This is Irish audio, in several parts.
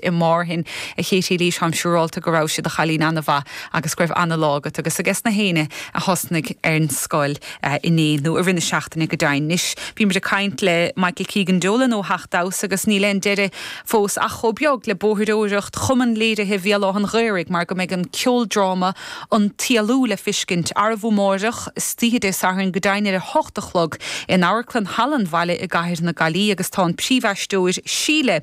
i Márthain, a Chéití Lís táim siúrálta go rabhais i do chailín ana-mhaith agus go raibh ana-lá agat agus ages na héinne a thosnaigh ar an scoil inné nó i rith na seachtaine go deimhin. Anois bhí muid ag caint le Michael Keegan Dolan ó Theach Damhsa agus níl aon deireadh fós ach chomh beag le bóithreoireacht Chumann Léirithe Bhéal Átha'n Ghaorthaidh mar go mbeidh an ceoldráma An tÉalú le feiscint, arú amáireach, istoíche Dé Sathairn go deimhin ar a hocht a chlog, in Amharclann Halla an Bhaile i gCathair na Gaillí agus tá an príomhaisteoir Síle.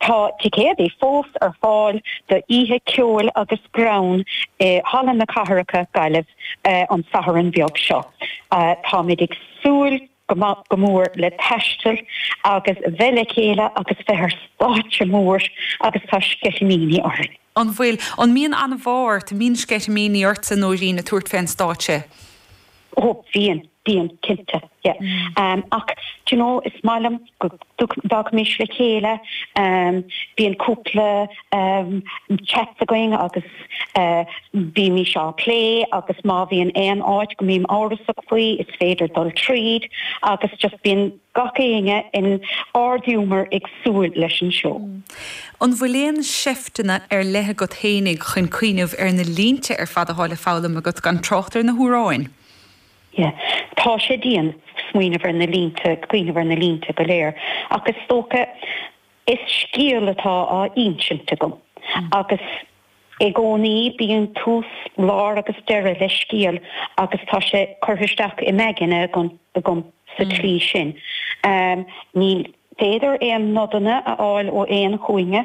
Tá ticéadaí fós ar fáil do oíche ceoil agus greann i Halla na Cathrach, Gaillimh, an Satharn beag seo. Táimid ag súil go mór le taisteal agus bheith le chéile agus bheith ar stáitse mór agus tá sceitimíní orainn. An bhfuil, an mbíonn anbhá ort, an mbíonn sceitimíní ortsa, a Nóirín, ag tabhairt fé an stáitse? ó bíonn, bíonn cinnte yeah ach d'you know is maith liom go dtagaimis le chéile bíonn cúpla chats againn agus bímís á plé agus má bhíonn aon áit go mbím amhrasach faoi is féidir dul tríd agus just bíonn Gach éinne in ardghiúmar ag súil leis an seó. An bhfuil aon seifteanna ar leith agat fhéinig chun cuimhneamh ar na línte ar fad atá le foghlaim agat, gan trácht ar na hamhráin? Yeah. Tá sé dian smaoineamh ar na línte, cuimhneamh ar na línte go léir, ach is dócha Is scéal atá á insint agam, agus i gcónaí bíonn tús, lár agus deireadh le scéal agus tá sé curtha isteach im aigne agam sa tslí sin. Ní féidir aon nodanna a fháil ó aon chúinne,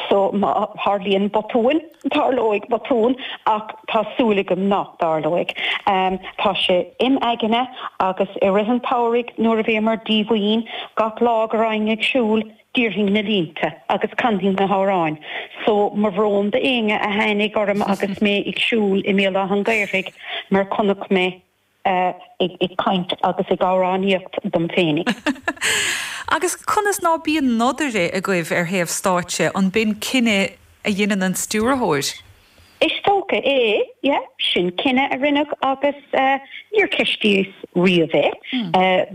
so má tharlaíonn botúin, Tarlóidh botún, ach tá súil agam nach dtarlóidh. Tá sé im' aigne, agus i rith an tsamhraidh nuair a bhíomar díomhaoin, gach lá go raghainn ag siúl, déarfainn na línte agus canfainn na hamhráin so, mo bhrón d'éinne a tháinig orm agus mé ag siúl i mBéal Átha'n Ghaorthaidh, mar chonaic mé. ag caint agus ag amhránaíocht dom fhéinig. Agus conas ná bíonn nodaire agaibh ar thaobh stáitse? An b'in cinneadh a dheineann an stiúrthóir? Is dócha é, yeah. Sin cinneadh a rinneadh agus níor cheistíos riamh é.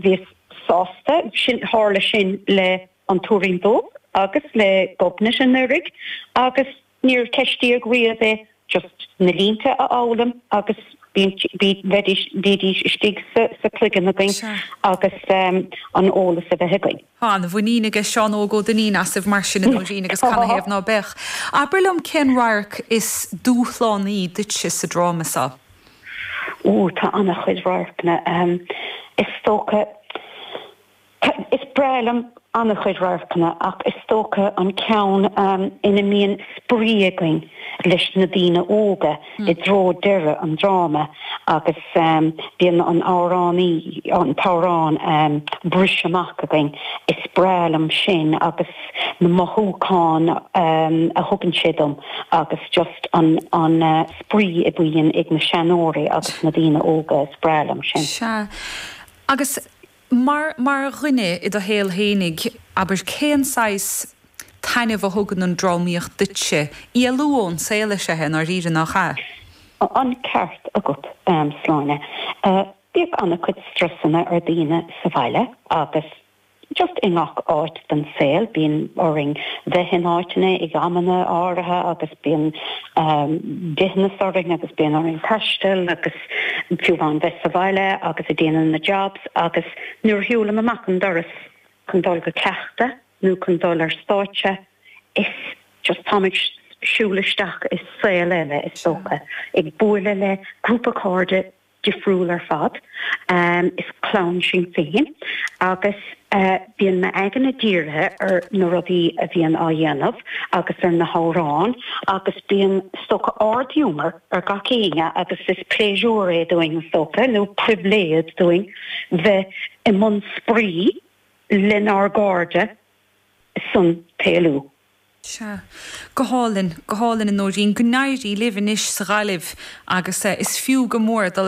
Bhíos sásta, sin, tharla sin le An Tuairín Dubh agus le Gobnait anuraidh agus Níor ceistíodh riamh é, just na línte a fhoghlaim agus iad a bheith istigh sa chloigeann againn agus an eolas a bheith againn. Tá an-mhuinín aige Seán Óg Ó Duinnín asaibh mar sin, a Nóirín, agus canathaobh ná beadh? Abair liom cén radharc is dúshlánaí duitse sa dráma so? Ó, tá an-chuid radharcanna, is dócha. Is breá liom an-chuid radharcanna ach is dócha an ceann ina mbíonn spraoi againn leis na daoine óga i dtreo deireadh an dráma agus bíonn an amhrán, an t-amhrán ag briseadh amach againn. Is breá liom sin agus na mothúcháin a thugann sé dom agus just an spraoi a bhíonn ag na seanóirí agus na daoine óga, is breá liom sin. Sea. Agus Ach mar dhuine i do shaol fhéinig, abair, cén saghas taitneamh a thugann an drámaíocht duitse? Éalú ón saol is ea é, i ndáiríre, nach ea? An ceart agat, Sláine. Bíonn an-chuid strusanna ar dhaoine sa bhaile agus just i ngach áit den saol. Bíonn orainn bheith in áiteanna ag amanna áirithe agus bíonn dithneas orainn agus bíonn orainn taisteal agus. Domhan bheith sa bhaile agus ag déanamh na jobs agus nuair a shiúlaim amach an doras chun dul go cleachtadh nó chun dul ar stáitse is just táim ag siúl isteach i saol eile is dócha, ag buaileadh le grúpa cairde difriúil ar fad is clann sinn féin agus bíonn m'aigne dírithe ar na rudaí a bhíonn á dhéanamh agus ar na hamhráin agus bíonn is dócha ard-ghiúmar ar gach éinne agus is pléisiúr é dúinn, is dócha, nó pribhléid dúinn bheith i mbun spraoi lenár gcairde sa tslí úd. Sea. Go hálainn. Go hálainn, a Nóirín. Go n-éirí libh anois sa Ghaillimh agus is fiú go mór dul ag.